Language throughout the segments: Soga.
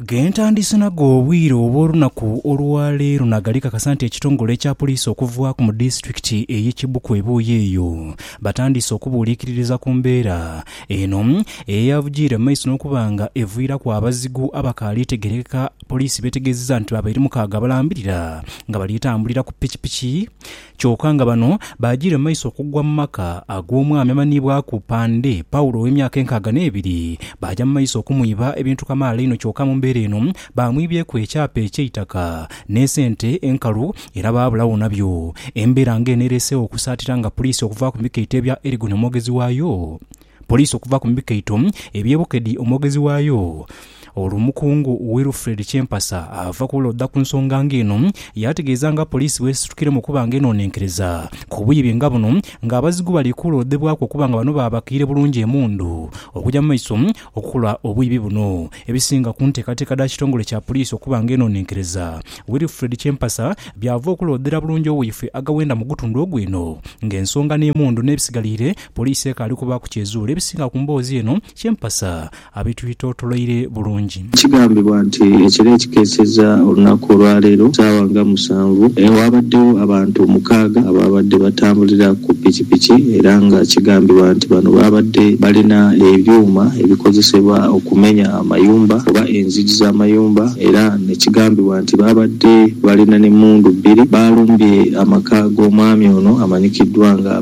Gentandise nago obwire obw'olunaku olwa leero nagali kakasa nti ekitongole ekya poliisi okuvaaku mu disitulikiti eye Kibuku ebuuyi eyo batandiise okubuuliikiririza ku mbeera eno eyavugiire mu maiso n'okuba nga eviiraku abazigu abakaali tegerekeka poliisi b'etegeezezza nti babaire mukaaga abalambirira nga bali tambulira ku pikipiki Kyoka nga bano baajiire mu maiso okugwa mu maka ag'omwami amanhiibwaku Pande, Paulo ow'emyaka enkaaga n'ebiri, baaja mu maiso okumwiba ebintu kamaala inho kyoka mu mbeera eno baamwibyeku ekyapa eky'eitaka n'esente enkalu era baabulagho nabyo. Embeera ng'eno ereeseegho okusaatira nga puliisi okuvaaku mu bikaito ebya Elgon omwogezi waayo, Poliisi okuva ku mikaito eby'e Bukedi omwogezi waayo Omukungu Wilfred Kyempasa ava kulooda ku nsonga nga eno yaategeeza nga poliisi bw'esitukiiremu okuba nga enoonenkereza ku bwibi nga buno nga abazigu bali kuloodebwaku okuba nga bano baabakiire bulungi emundu okugya mu maiso okukola obwibi buno ebisinga ku nteekateeka dha kitongole kya poliisi okuba nga enoonenkereza Wilfred Kyempasa by'ava okuloodera bulungi owaifwe agawenda mu gutundu ogw'eno ng'ensonga n'emundu n'ebisigaliire Poliisi ekaali kubaaku ky'ezuula ebisinga ku mboozi eno kye mpasa abetwetotoloire bulungi. Kigambibwa nti ekiro ekikeesezza olunaku olwaleero ssaawa nga musanvu, waabaddewo abantu mukaaga abaabadde batambulira ku pikipiki era nga kigambibwa nti bano baabadde balina ebyuma ebikozesebwa okumenya amayumba oba enzigi z'amayumba era ne kigambibwa nti baabadde balina n'emmundu bbiri. Baalumbye amaka g'omwami ono amanyikiddwa nga.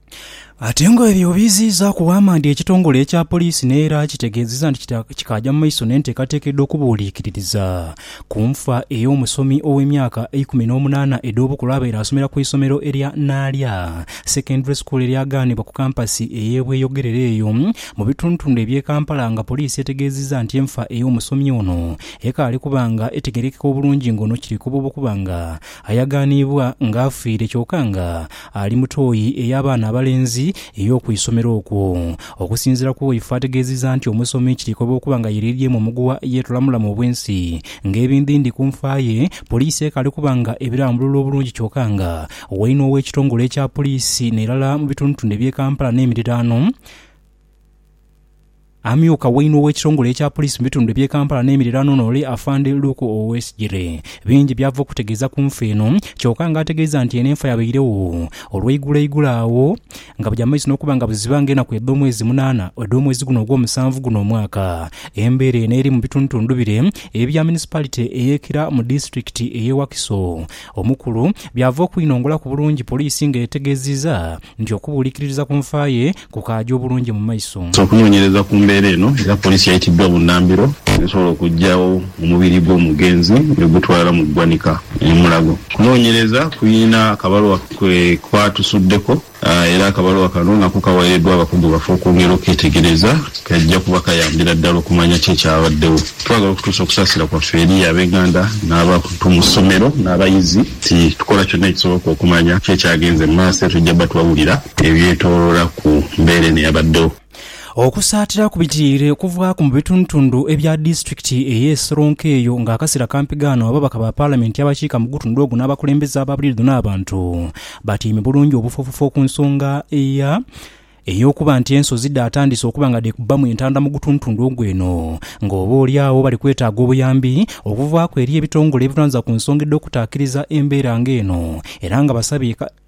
Ate nga ebyo obiiziizaaku, Waamandi ekitongole ekya poliisi n'era kitegeezezza nti kikaaja mu maiso n'enteekateeka edh'okubuuliikiririza ku nfa ey'omusomi ow'emyaka eikumi n'omunaana edh'obukulu abaire asomera ku isomero erya Naalya Secondary School eryagaanibwa ku kampasi ey'e Bweyogerere eyo mu bitundutundu eby'e Kampala nga poliisi etegeezezza nti enfa ey'omusomi ono ekaali kuba nga etegeerekeka obulungi ng'ono kiri kubuuba okuba nga Ayagaaniibwa nga afiire kyoka nga ali mu tooyi ey'abaana abalenzi ey'oku isomero okwo. Okusinziira ku Woifu ategeezizza nti omusomi kirikoba okuba nga yereeryemu omuguwa yeetula mulamu obwensi ng'ebindindi ku nfa ye, poliisi ekaali kuba nga ebirambulula obulungi kyoka nga waine ow'ekitongole ekya poliisi n'erala mu bitundutundu eby'e Kampala n'emiriraano, Amyuka wainhe ow'ekitongole ekya poliisi mu bitundu eby'e Kampala n'emiriraano n'ole Afande Luke Owesigyire bingi by'ava okutegeeza ku nfa eno kyoka nga ategeeza nti eno enfa yabairegho olweiguloigulo agho nga buja mu maiso n'okuba nga buziba nga enaku edh'omwezi munaana edh'omwezi guno ogw'omusanvu guno omwaka. Embeera eno eri mu bitundutundu bire ebya munisipalite ey'e Kira mu disitulikiti ey'e Wakiso omukulu byava okwinongolaku bulungi poliisi nga etegeeziza nti okubuulikiririza ku nfa ye kukaaja obulungi mu maiso. Okunoonyereza ku mbeera eno era poliisi yaitiddwa bunnambiro esobola okuggyawo omubiri gw'omugenzi ni gutwala mu ggwanika e Mulago. Okunoonyereza kulina akabaluwa ke kwatusuddeko era akabaluwa kano nako kaweereddwa abakugu baffe okwongera okuketegereza. Kaija kuba kayambira ddala okumanya ki ekyabaddewo. Twagala okutuusa okusaasira kwaffe eri ab'enganda n'abantu mu ssomero n'abayizi nti tukola kyonna ekisoboka okumanya ki ekyagenze mu maaso era tujja batuwawulira. ebyetooloola ku mbeera eno eyabaddewo. Okusaatira ku bitiire okuvaaku mu bitundutundu ebya disitulikiti eye Seronkeeyo nga akasera kampi gaano ababaka ba palamenti abakiika mu gutundu ogwo n'abakulembeze aba bulidho n'abantu batyaime bulungi obufoofofo ku nsonga ey'okuba nti ensozi dhaatandise okuba nga dhekubbamu entanda mu gutundutundu ogwo eno nga oba oli agho bali kwetaaga obuyambi okuvaaku eri ebitongole ebirwaniriza ku nsonga edh'okutaakiriza embeera nga eno era nga basabye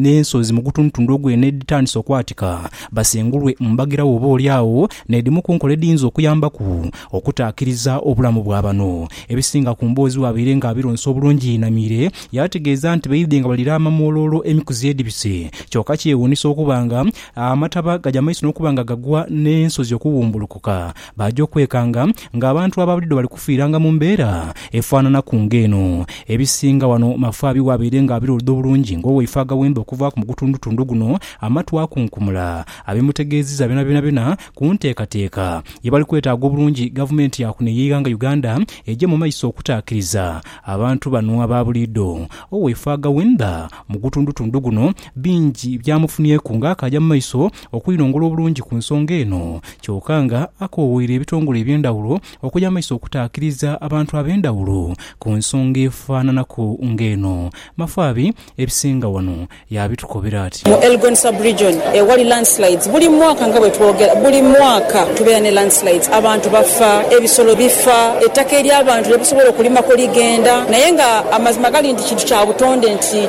n'ensozi mu gutundutundu ogw'eno edhitandise okwatika basengulwe mu mbagirawo oba oli agho n'edhimu ku nkola edhiyinza okuyambaku okutaakiriza obulamu bwa bano. Ebisinga ku mboozi bwabaire nga abironsa obulungi yeinamiire yaategeeza nti baidhye nga balira amamwoloolo emikuzi edhibise kyoka kyewuunisa okuba nga amataba gaja maiso n'okuba nga gagwa n'ensozi okuwumbulukuka Baaja okwekanga ng'abantu aba buliidho bali kufiiranga mu mbeera efaananaku ng'eno. Ebisinga wano mafaabi w'abaire ng'abira oludho bulungi ng'owaife agaghemba okuvaaku mu gutundutundu guno amatu akunkumula abimutegeezizza byonabyona ku nteekateeka ye bali kwetaaga obulungi Gavumenti ya kuno ey'eighanga Uganda eije mu maiso okutaakiriza abantu bano aba buliidho. Owaife agaghemba mu gutundutundu guno bingi byamufunyeku ng'akaaja mu maiso okwinhongoola obulungi ku nsonga eno kyoka nga akoowoire ebitongole eby'endhawulo okuja mu maiso okutaakiriza abantu ab'endhawulo ku nsonga efananaku nga eno. Mafaabi ebisinga wano yaabitukobera ati. Mu Elgon Sub-region ewali landslides buli mwaka nga bwetwogera buli mwaka tubeera ne landslides abantu bafa, ebisolo bifa, ettaka ery'abantu lyebusobola okulimako ligenda naye nga amazima gali nti kintu kya butonde nti